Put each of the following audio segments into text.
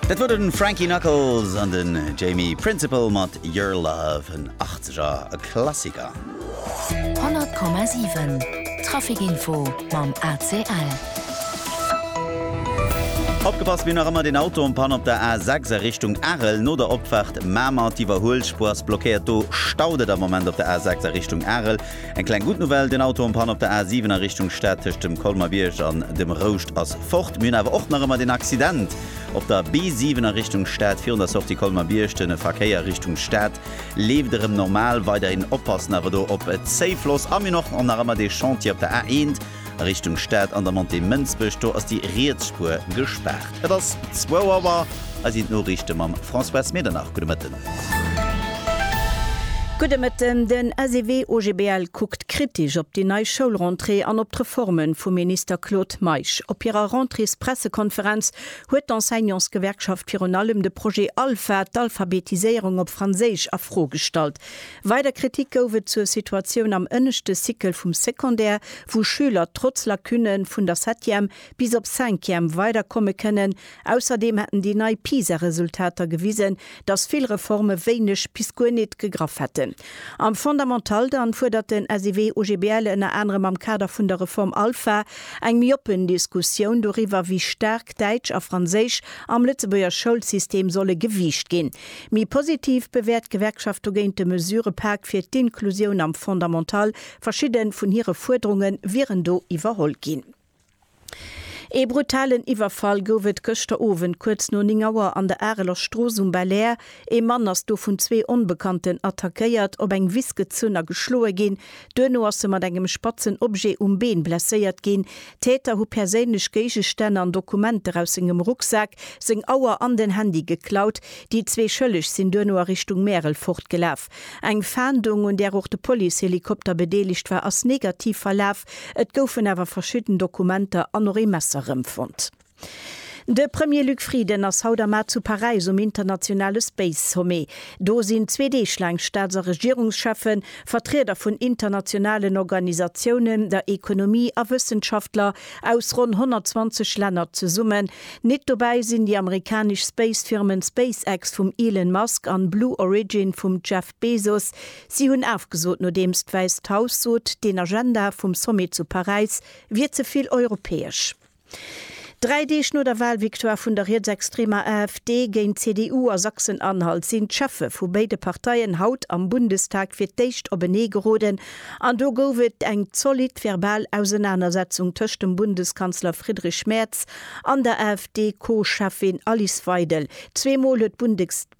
Dat wor den Frankie Knuckles an den Jamie Principle mat Your Love, en 80 er Klassiker. 100,7 Traficinfo mam ACL. Opgepasst, mir hunn nach ëmmer deen Auto en Panne op der A6 a Richtung Arel. No der Opfaart Mamer, d'Iwwerhuelspuer ass blockéiert, do staut et am Moment op der A6 a Richtung Arel. Eng kleng gutt Nouvelle, den Auto am Panne op der A7 a Richtung Stad tëscht dem Colmer-Bierg an dem Rouscht ass fort. Mir hunn awer och nach ëmmer den Accident op der B7 a Richtung Stad virun der Sortie Colmer-Bierg. De Verkéier Richtung Stad leeft erëm normal. Weiderhin oppassen awer do op Zéifloss. A mir hunn och nach ëmmer dee Chantier op der A1. A Richtung Stad an der Montée Mënsbech, do ass déi riets Spuer gespaart. Et ass zwou Auer, hei sinn d'Noriichte mam Françoise Medernach. Gudde Mëtten. Gudde Mëtten. Den SEW OGBL kuckt kritesch op déi nei Schoulrentrée an op d'Reforme vum Minister Claude Meisch. Op hirer Rentréespressekonferenz huet d'Enseignantsgewerkschaft virun allem de Projet Alpha, d'Alphabetiséierung op Franséisch, a Fro gestallt. Weider Kritik gouf et zur Situatioun am ënneschte Cycle vum Secondaire, wou Schüler trotz Lacune vun der Septième bis op Cinquième weider komme kënnen. Ausserdeem hätten déi nei PISA-Resultater gewisen, datt vill Reforme wéineg bis guer nit gegraff hätten. Am Fondamental dann fuerdert den SEW-OGBL ënner anerem am Kader vun der Reform Alpha eng méi oppen Diskussioun doriwwer, wéi staark Däitsch a Franséisch am Lëtzebuerger Schoulsystem solle gewiicht ginn. Méi positiv bewäert d'Gewerkschaft dogéint de Mesurëpak fir d'Inklusioun am Fondamental. Verschidde vun hire Fuerderunge wieren do iwwerholl ginn. Ee brutalen Iwwerfall gouf et gëschter Owend kuerz no 9 Auer an der Areler Strooss um Belair. Ee Mann ass do vun zwee Onbekannten attackéiert, op eng Wiss gezunn a geschloe ginn. Duerno ass se mat engem spatzen Objet um Been blesséiert ginn. D'Täter hu perséinlech Géigestänn an Dokumenter aus sengem Rucksak, seng Auer an den Handy geklaut. Déi zwee Schëlleg sinn duerno a Richtung Märel fortgelaf. Eng Fahndung, un där och de Policehelikopter bedeelegt war, ass negativ verlaf. Et goufen awer verschidden Dokumenter an och ee Messer rëmfonnt. De Premier Luc Frieden ass haut am Mar zu Paräis um internationale Space Sommet. Do sinn zwee Deeg laang Staats a Regierungscheffen, Vertrieder vun internationalen Organisatiounen, der Ekonomie a Wëssenschaftler aus ronn 120 Länner zesummen. Nit dobäi sinn déi amerikanesch Space-Firmen SpaceX vum Elon Musk an Blue Origin vum Jeff Bezos. Si hunn afgesot, nodeems d'Wäisst Haus sot, den Agenda vum Sommet zu Paräis wier ze vill europäesch. Dräi Deeg no der Wahlvictoire vun der rietsextremer AfD géint d'CDU a Sachsen-Anhalt sinn d'Cheffe vu béide Parteien haut am Bundestag fir d'éischt openee geroden an do gouf et eng zolidd verbal Ausenanersetzung tëscht dem Bundeskanzler Friedrich Merz an der AfD-Co-Cheffin Alice Weidel. Zweemol huet d'Bundeskanzlerin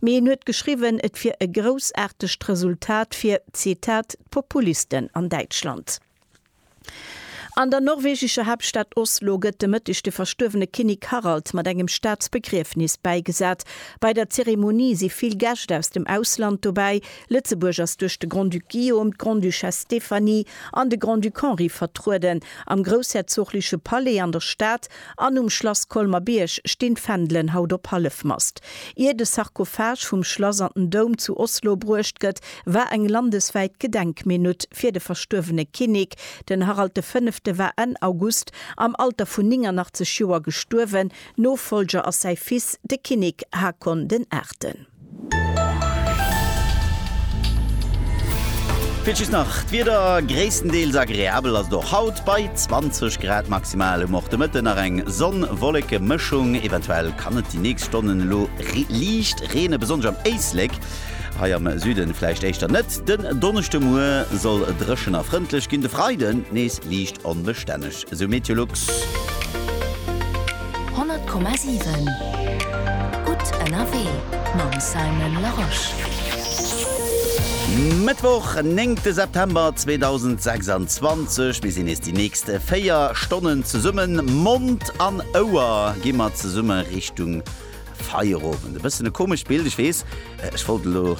Mee en huet geschriwwen, et wier e groussaartegt Resultat fir, Zitat, d'Populisten an Däitschland. An der norwegescher Haaptstad Oslo gëtt de Mëtteg de verstuerwene Kinnek Harald mat engem Staatsbegriefnis bäigesat. Bei der Zeremonie si vill Gäscht aus dem Ausland dobäi. Lëtzebuerg ass duerch de Grand-Duc Guillaume, d'Grande-Duchesse Stéphanie an de Grand-Duc Henri vertrueden. Am groussherzogleche Palais an der Stad An um Schlass Colmer-Bierg stinn d'Fändelen haut op Hallefmast. Ier de Sarkophage vum Schlass an den Doum zu Oslo bruecht gëtt, war eng landeswäit Gedenkminutt fir de verstuerwene Kinnek. Den Harald de Fënnefte war Enn August am Alter vun 89 Joer gestuerwen. Nofollger ass säi Fils, de Kinnek Haakon den Aachten. Fir d'Just nach d'Wieder, gréisstendeels agreabel ass et och haut bei 20 Grad maximal. Um och de Mëtten nach eng Sonn-Wolleke-Mëschung, eventuell kann et déi nächst Stonnen elo liicht reenen, besonnesch am Éislek, hei am Süden vläicht éischter net. Den Donneschdemuer soll dréchen a frëndlech ginn, de Freiden nees liicht onbestänneg. Esou Meteolux. 100,7 Gutt ënnerwee mam Simon Larosche. Mëttwoch, néngte September 2026. Mir sinn nees déi nächst 4 Stonnen zesummen. Mond an Ouer gi mer zesumme Richtung. Feierowend, e bëssen e komescht Bild, ech weess, ech wollt et elo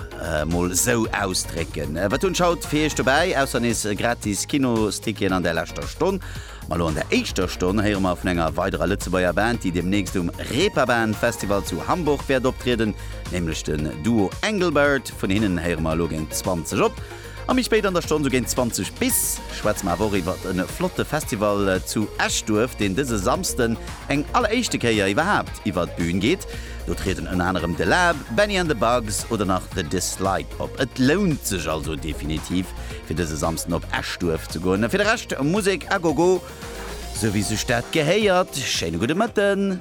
mol esou ausdrécken. Wat hunn ech haut fir Iech dobäi, ausser nees gratis Kinosticketen an der leschter Stonn. Ma elo an der éischter Stonn héiere mer vun enger weiderer Lëtzebuerger Band, déi deemnächst um Reeperbahn Festival zu Hamburg wäert optrieden, nämlech den Duo Engelbert. Vun hinnen héiere mer elo géint 20 op. A méi spéit an der Stonn, sou géint 20 bis, schwätze mer awer och iwwert e flotte Festival zu Eschduerf, deen dëse Samsden eng alleréischte Kéier iwwerhaapt iwwert d'Bühn geet. Do trieden ënner anerem The Lab, Bennie and the Bugs oder nach The Dislike op. Et lount sech also definitiv, fir dëse Samsden op Eschduerf ze goen. A fir de Rescht, Musek à gogo, sou wéi sech dat gehéiert. Schéine gudde Mëtten.